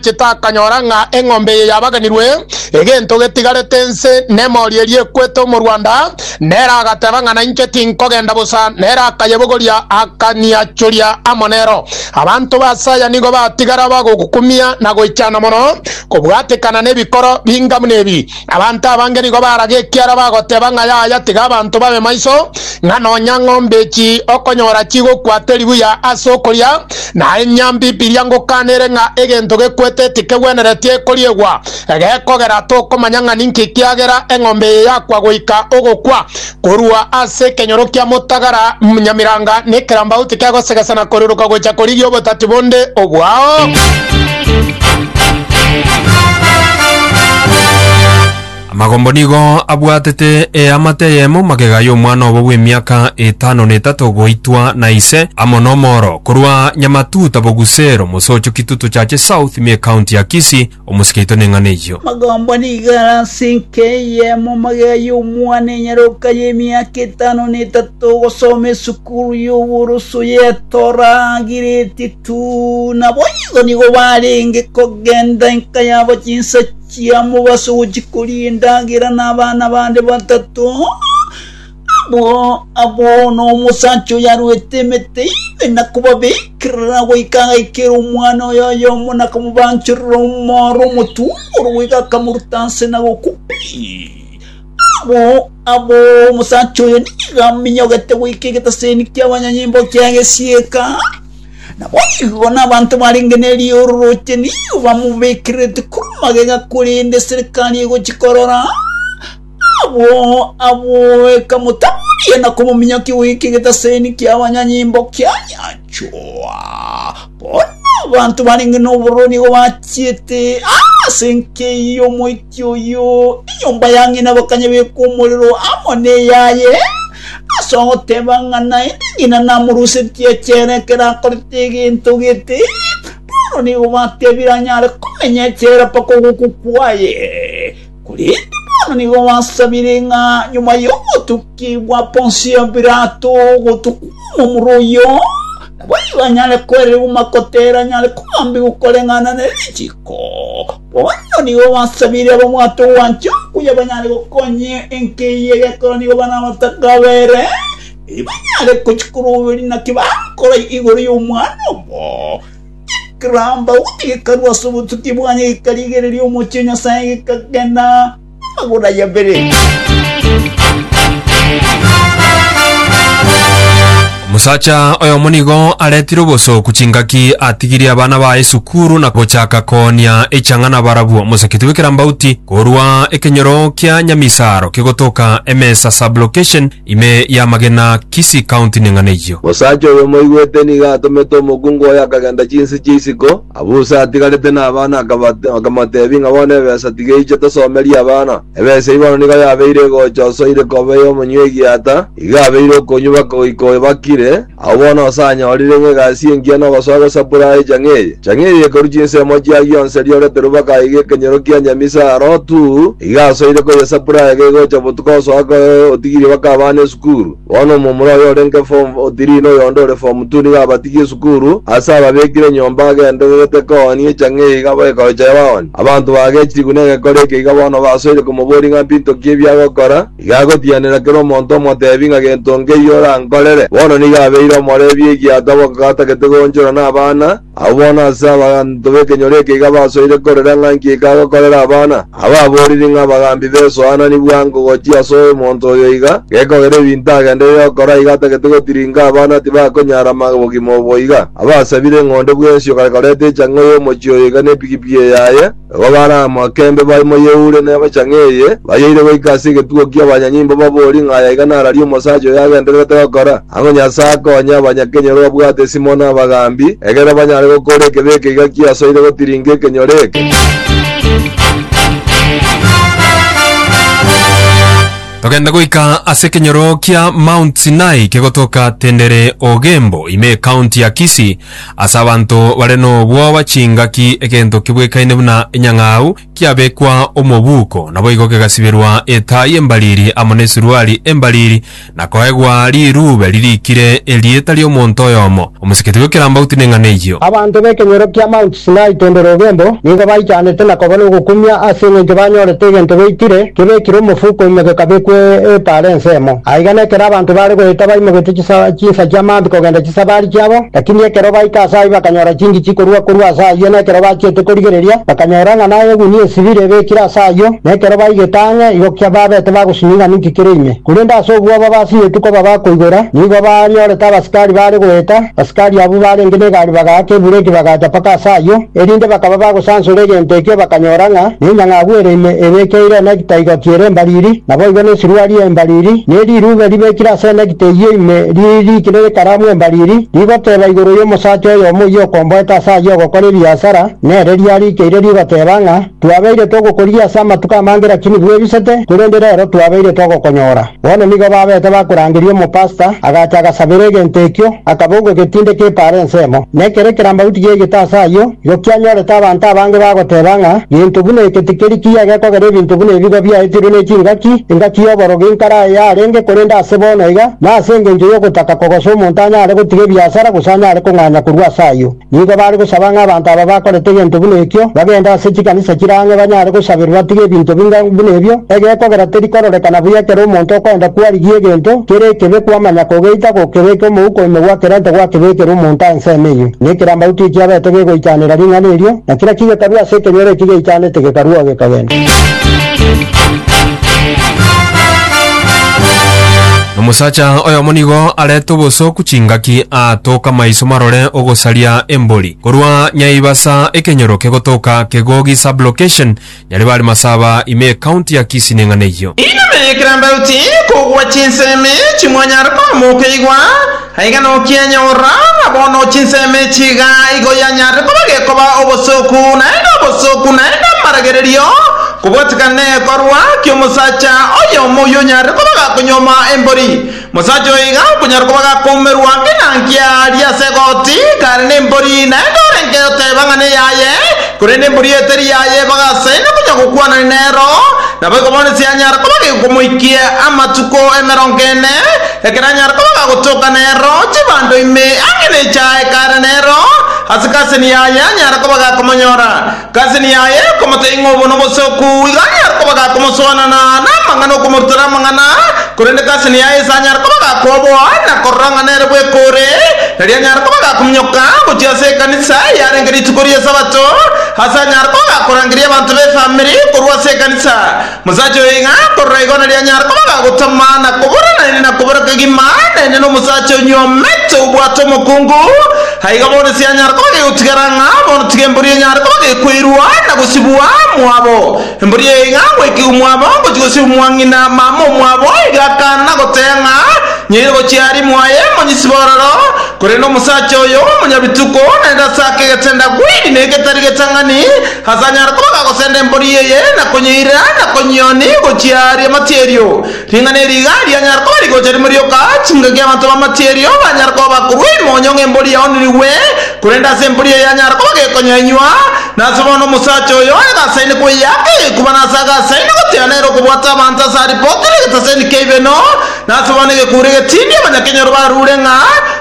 Chitakanyora ng'a eng'ombe eye yabaganirwe, egento getigarete inse nemori eria ekwete omorwanda, nere agateba ng'a nainche tinkogenda bosa, nere akayebogoria, akaniachoria amo nero. Abanto b'aase aya nigo batigara bagogokumia na goichana mono, kobwatekana nebikoro binga buna ebi. Abanto abange nigo baraga ekiara bagoteba ng'a yaya tiga abanto babe maiso, ng'a nonya ng'ombe echi okonyora chigokwate ribuya ase okoria, na enyambibiria ngokana ere ng'a egento gekwete tikegwenereti ekoriegwa, gekogera tokomanya ng'a ninki ekiagera eng'ombe eye yakwa goika ogokwa, Korwa ase ekenyoro kia motagara Nyamiranga nekerambau tikegosegesana koruruka gocha korigia obotati bonde obwao. Amagombo nigo abwatete eamate eyemo magega y'omwana obo bw'emiaka etano na etato goitwa na ise amo n'omoro korwa Nyamatuta Bogusero, Mosocho Kitutu Chache South, me county ya Kisii, Omosike oito neng'ana eyio. Magomba nigo are ase enka eyemo amagega y'omwana enyaroka y'emiaka etano na etato ogosoma esukuru y'oboroso ye Torah agireti tu. Nabo igo nigo barenge kogenda enka yabo chinsa chiamobaso gochia koria endagera na abana bande batato. Abwo abwo nomosacha oyaruete emete ime na kobabekerera goika agaikera omwana oye oyomo na komobanchorera omoro omotunguru goika akamoruta ase na gokwa pi. Abwo abwo omosacha oyo nigo aminyogete goika egetaseni ki'abanyanyimbo ki'egesiika, na boigo nabanto barenge ne riororoche nigo bamobekererete korwa magega korende eserekari egochi korora. Agwo agwo ekamotamoria na komominyokia goika egetaseni ki'abanyanyimbo kianyanchwa. Bono abanto barenge nobororo nigo bachiete ase enka eyio omoiti oyio, enyomba ya ng'ina bakanyebeka omorero amo neyaye, ase ogoteba ng'a naende ng'ina namorusetie echere ekero akorete egento gete, bono nigo batebire anyare komenya echere mpaka ogokwa kwaye. Korende bono nigo gwasabire ng'a nyuma y'ogotukigwa Ponsio Pilato gotukwa omomura oyio, naboigo anyare koererigwa makote ere anyare kobambigwa koreng'ana ne richiko. Bono nigo gwasabire ababwate ogwancha okuya banyare gokonya enka eyio egekora nigo bana abataka bere, erio banyare gochia koroberia naki bakorai igoro y'omwana obo. Kerambau gekarwa ase obotuki bwaye, gekarigereria omochie o Nyasae, gekagena amagoro aye abere. Omosacha oyomo nigo aretire obosooku chingaki atigirie abana baye esukuru na gochaka koonia echang'ana barabwo. Omosakiti bw'ekerambauti korwa ekenyoro kia Nyamisaro kegotoka emesa sublocation Ime y'amagena, Kisii County neng'ana eyio. Omosacha oyo omoigwete nigo atomete omokungu oye akagenda chinse chia isiko, abwo Usa atigarete n'abana akaba- akamoteebia ng'a bono ebesa tiga eiche tosomerie abana. Ebesa eyio bono nigo yabeire egocha osoire koba ey'omonywegi ata, iga abeire okonywa baka goika oyo bakire, Agwo bono osanyorire ng'a egasi engiya nogosoa gosapura aye chang'iri. Chang'iri ekorua chinsemo chia gionsi erio orete ruba kaiga ekenyoro kia nyamisa aa Lotu, iga asoire koyesapura aye gegocha botuko osoa koe otigirie baka abana esukuru. Bono omomura oyo orenge form three na oyonde ore form two nigo abatigie esukuru, ase ababekire nyomba agendererete koonia echang'iri iga baekoroche baoni. Abanto baagechirigwe negekore eke iga bono basoire komoboria ng'a mpintoki ebi agokora, Igagotianera kera omonto omotebi ng'a gento nkeiyo orankorere. Bono nigo abeire omorebia egiato abo gatagete goonchora nabana, abwo bono ase abanto b'ekenyoro eke iga basoire korera ng'a nki ekagokorera abana. Aba aboriri ng'a abagambi besoanani bwango gochia ase omonto oyo iga gekogera ebinto agenderere gokora iga atagete gotiringa abana tibakonyara bogima obo iga. Abasabire ng'onde bw'ensio gare koreta echang'o y'omochie oyo iga nepigipigi eyaye. Nabo baare amo akembe baimo y'eure na ebachang'e eye, bayeire goika ase egetugo ki'abanyanyimbo babori ng'a aya iga nararia omosacha oyo agendererete gokora. Ang'o Nyasae akonye abanyakenyoro babwate esimo na abagaambi, egere banyare gokora ekebe eke iga kiasoire gotiringa ekenyoro eke? Togende goika ase ekenyoro kia Mount Sinai kegotoka Tendere Ogembo ime ecounty ya Kisii, Ase abanto bare nobwoba chingaki egento kebwekaine buna enyang'au kiabekwa omobuko, naboigo kegasiberwa etaa y'embariri amo nesuruari embariri, na koegwa rirube ririkire erieta ri'omonto oyomo. Omosikiti bw'ekerambauti neng'ana eyio. Abanto b'ekenyoro kia Mt. Sinai kende rogendo, nigo baichanete na koba nogokumia ase engencho banyorete egento beitire, kebekire omofuko ime gekabekwa epaara ensemo. Aiga nekero abanto baare goeta baimogete chisabaari chinsa chia maambia kogenda chisabaari chiabo, lakini ekero baika ase ayio bakanyora chingichi korua korwa ase ayio na ekero bachiete korigereria, bakanyora ng'a naye egunia esibire ebekire ase ayio, na ekero baigete ang'e igo kia babete bagosinyia ing'ana inki kere ime. Korende ase obwoba basinyetwe koba bakoigora, nigo banyorete abasikari baare goeta, Asikari abwo baarenge negari bagaaka ebureki bagacha mpaka ase ayio, erinde bakaba bagosansora egento ekio bakanyora ng'a nenyang'agu ere ime ebekeire enekita igoti ere embariri, naboigo nesuruari embariri, ne rirube ribekire ase enekita eyio ime riri rikire ekaramu embariri, rigoteba igoro y'omosacha oyomo oyia okomboete ase ayio ogokora ebiasara, nere riarikeire rigoteba ng'a, Twabeire togokorigia ase amatuko amange lakini bwebisete, korende rero twabeire togokonyora. Bono nigo babete bakorangeria omopasta, agacha agasabera egento ekio, akabogwa getinde k'epaara ensemo. Na ekero ekerambauti giaigete ase ayio, igo kianyorete abanto abange bagoteba ng'a gento buna eke tikeri kiya gekogera ebinto buna ebigo biaetirwe ne chingaki, engaki y'oborogi nkare aye yarenge, korende ase bono iga, nase engencho y'ogotaka kogosa omonto anyare gotiga ebiasara gose anyare kong'anya korwa ase ayio. Nigo bare gosaba ng'a abanto aba bakorete egento buna ekio bagende ase chikanisa chire ang'e banyare gosaberwa batige ebinto binga buna ebio. Egekogera teri kororekana buya ekero omonto okoenda kwarigia egento kere ekebe kwamanya kogeita gokebeka omouko ime gwakerente gwakebekera omonto aa ensemo eyio. Na ekerambauti ekiabete gegoichanera ring'ana erio, na kera kigekarua ase ekenyoro eki geichanete gekaruo gekagenda. Omosacha oyomo nigo arete obosooku chingaki aatoke amaiso marore ogosaria embori. Korwa Nyaibasa ekenyoroke gotoka Kegogi sub-location, Nyaribari Masaba ime ecounty ya Kisii neng'ana eyio. Inama ya Ekerambaoty, Kogwa chinsemi chimwanyare komoka igwa. Aiga nokianyorora, ng'a bono chinsemo echi iga igo yanyarire koba gekoba obosooku, naende obosooku naende amaragererio kobwatikana negekorwa ki'omosacha oyomo oyio onyarire koba gakonyuoma embori. Mosacha oyo iga okonyara koba gakoumerwa ngina nkia aria ase egoti, kare nembori, naende orenge oteba ng'a neyaye, korende embori eye teri yaye, bagasaine konya gokwanani nero, naboigo bono ase yanyara koba gekomoikia amatuko emerongo ene, Ekero anyare koba gagotoka nero, chibando ime ang'e ne echae kare nero, ase kaseni yaye anyare koba gakomonyora. Kaseni yaye ekomoteing'a obo nobosoku, igo anyare koba gakomoswanana namang'ana okomorutora amang'ana, korende kaseni yaye ase anyare koba gakoboa na korora ng'a nere bweka ore, erio anyare koba gakominyoka gochia ase ekanisa yarenge rituko ri'esabato, ase anyare koba gakorangeria abanto b'efamiri korwa ase ekanisa. Omosacha oyo iga akorora igo narianyare koba gagotama na kobora naende na kobora kegima naende nomosacha onyuomete obwate omokungu, aiga bono sianyare koba gegotigara ng'a bono tiga embori enyare koba gekwairwa na gosibwa mwabo. Embori eye iga gwaikigwa mwabo gochia gosibwa mwa ng'ina mama omwabo, iga akana goteba ng'a nyaire gochia aria mwaye monyisibe ororo, korende omosacha oyo omonyabituko naende ase akegete ndagwiri na egetari getang'ani, Ase anyare koba gagosenda embori eye na konyeirera na konyioni gochia ri'amatie erio. Ring'ana eri iga rianyare koba rigocha rimo rioka, chingaki abanto b'amatie erio banyare koba bakorua ime onye ng'a embori yaonirigwe, korende ase embori eye anyare koba gekonya inywa. Na ase bono omosacha oyo ayagasaine kweyaka egekuba na ase agasaine goteana ere okobwata abanto ase aripotire egetaseni ki'aibeno, Nase bono egekuure getindi abanyakenyoro barure ng'a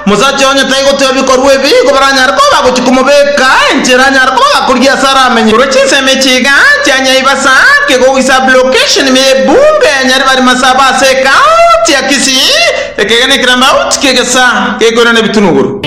omosacha onye tai gotiga bikorwa ebi, nigo baranyare koba bagochia komobeeka enchera anyare koba gakoria ase ara amenye. Korwa chinsemo echi iga chia Nyaibasa kegoko goisa Blocation ime ye Bunge ya Nyaribari Masaba ase Ekaunti ya Kisii, eke iga ne kirambaut kie gesa gekoirana ebitunuguru.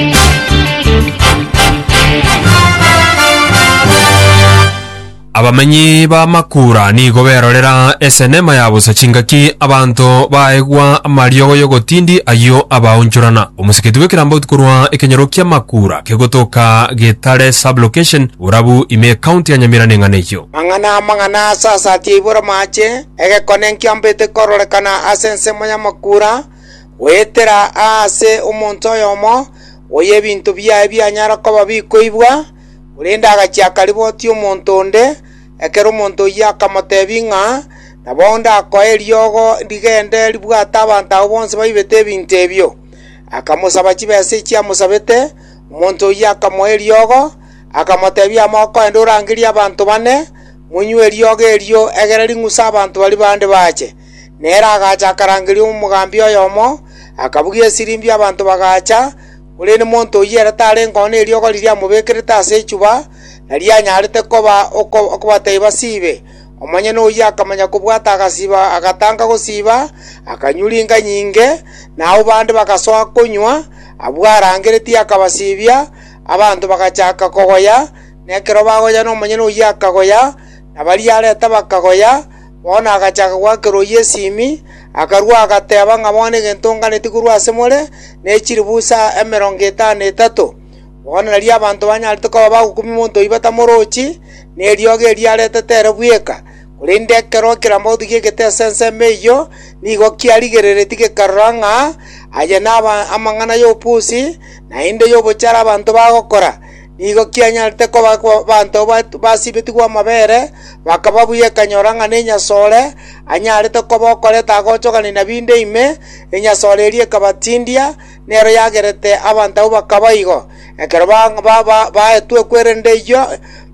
Abamenyi ba Makura nigo berorera esenema ya bosa chingaki abanto baegwa amariogo y'ogotindi ayio abaonchorana. Omosiketi bw'ekerambauti korwa ekenyoro kia Makura kegotoka Getare Sub-Location, Borabu ime ecounty ya Nyamira neng'ana eyio. Mang'ana amang'ana ase asati ya iboro amache, egekone nkiambete kororekana ase ensemo ya Makura, goetera aase omonto oyomo, oy'ebinto biaye bianyara koba bikoibwa, Korende agachia akaribotia omonto onde, ekero omonto oyio akamoteebia ng'a, Nabo ndakoe eriogo rigende ribwate abanto abwo bonsi baibete ebinto ebio. Akamosaba chibesa echio amosabete, omonto oyio akamoa eriogo, akamoteebia, Ama okogenda orangerie abanto bane, monywe eriogo erio, egere ring'use abanto baria bande baache. Nere agacha akarangeria omogambi oyomo, akabugia esirimbio abanto bagaacha, Korende monto oyio ere tarengeo neriogo riria amobekerete ase echuba, nario anyarete koba okobatebia basiibe. Omonyene oyio akamanya kobwata agasiiba agatanga gosiiba, akanywa ringa nyinge, na abwo bande bagasoa konywa, abwo arangeretie akabasiibia, abanto bagachaka kogoya, na ekero bagoyana omonyene oyio akagoya, na baria areta bakagoya, Bono agachaka gwakerwa oyio esimi, akarua agateba ng'a bono egento nganetie korwa ase more ne chiribusa emerongo etano na etato. Bono nario abanto banyarete koba bagokumia omonto oyio batamorochi, ne riogi erio aretete ere bweka. Korende ekero kirambagotu giegete ase ensemo eyio, nigo kiarigereretie gekarora ng'a aya namang'ana y'obopusi, naende y'obochare abanto bagokora. Nigo kianyarete koba abanto basibetigwe amabere, bakaba buya ekanyora ng'a nenyasore anyarete koba okoreta agochogani na binde ime, enyasore eria ekabatindia, nero yagerete abanto abwo bakaba igo. Ekero baetwe ekwerende eyio,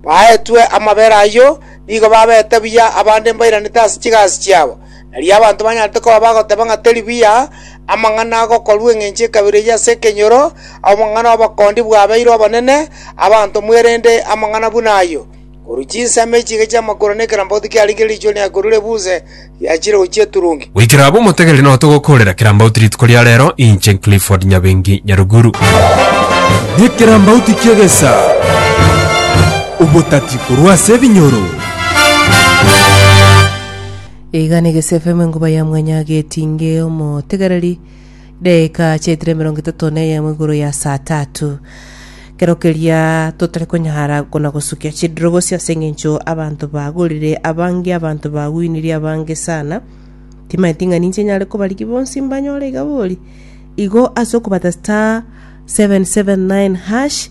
baetwe amabere ayio, nigo babete buya abande mbairanete ase chigasi chiabo. Erio abanto banyarete koba bagoteba ng'a teri buya amang'ana agokorwa engencho ekabere eyio ase ekenyoro, obong'ana obokondi bwabeirwe obonene abanto mwerende amang'ana buna ayio, korwa chinsemo echiika chi'amakura na ekerambauti kiaringire riichweri na korwa rebuse riachire gochia eturungi. Goikera abwo motegere nao togokoorera kerambauti rituko ria reero, inche Clifford Nyabengi Nyaruguru. Nekerambauti ki'egesaa, obotati korwa ase ebinyoro. Igana egese FM enkuba ya mwanya getinge omotegereri deka chiaitire emerongo etato na eyemo igoro ya saa tatu kero keria totari konyara kona gosukia chidiro gose ase eng'encho abanto bagorire abange abanto bagwinirie abange sana timanye ting'ani inche nyare kobarigia bonsi mbanyore igabori igo ase okobata star 779 hash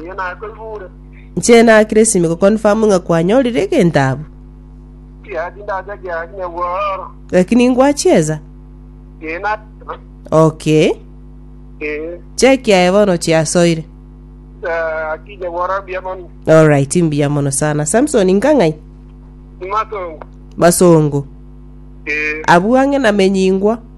Erio naye koibure. Inche na Kiresimi go confirm ng'a kwanyorire egento abwo. Kiya tindacha kiya kinya bworo. Lakini ngwachieza. Ee na Okay. ee. Check yaye bono chiasoire. Eh, Kinya bworo mbuya mono. All right, mbuya mono sana. Samson ngang'ai? Imatongo. Basongo. Ee. Abwo ang'e namenyingwa.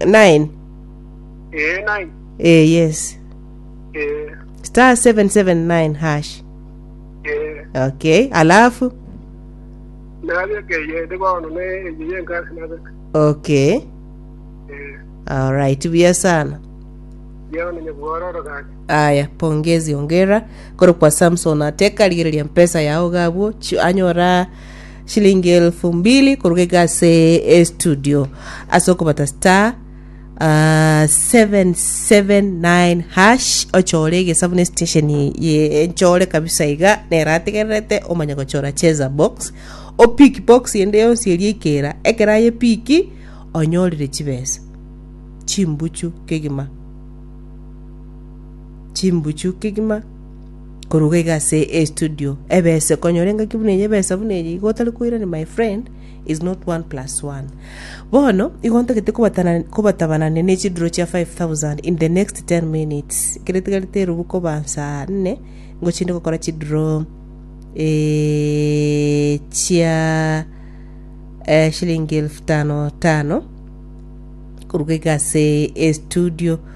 9 ee nine eh yes ee star 779 hash ee okay alafu nabekeye ndi bono ne eyi yenkasi nabeka okay ee alright buya sana yao ninye bwororo gaki aya pongezi ongera koro kwa samson ateka rigereria mpesa yao gabwo chi- anyora shilingi elfu mbili koruga iga ase estudio ase okobata star ah, 779 hash ochore egesabu ne station ye enchore kabisa iga nero ategererete omanye gochora cheza box opiki box ende yonsi eria ekera ekero ayepiki onyorire chibesa chimbuchu kegima chimbuchu kegima Koruga iga ase e studio ebese konyora engaki buna eye ebesa buna eye igo otari koirania my friend is not one plus one bono igo ntagete kobatana kobatabana ne chiduro chia 5000 in the next 10 minutes ekero etigarete erubu koba saa nne ngochinde gokora chiduro eh, chia eh, shilingi elfu tano tano koruga iga ase e studio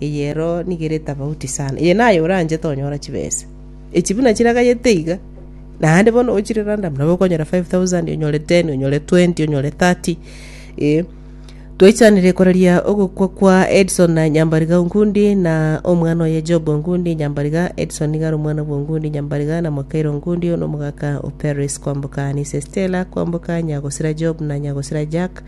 Eye ero nigo ere etafauti sana. Eye naye oranchete onyora chibesa. Echi buna chiragayete iga. Naende bono ochire random nabo okonyora 5000, onyore 10, onyore 20, onyore 30. Eh. Twaichanire koraria ogokwa kwa Edson na Nyambariga Ongundi na omwana oye Job Ongundi Nyambariga. Edson niga are omwana bwa Ongundi Nyambariga na Mwakairo Ongundi, one omogaka o Paris kwamboka Anise Stella kwamboka Nyagosira Job na Nyagosira Jack.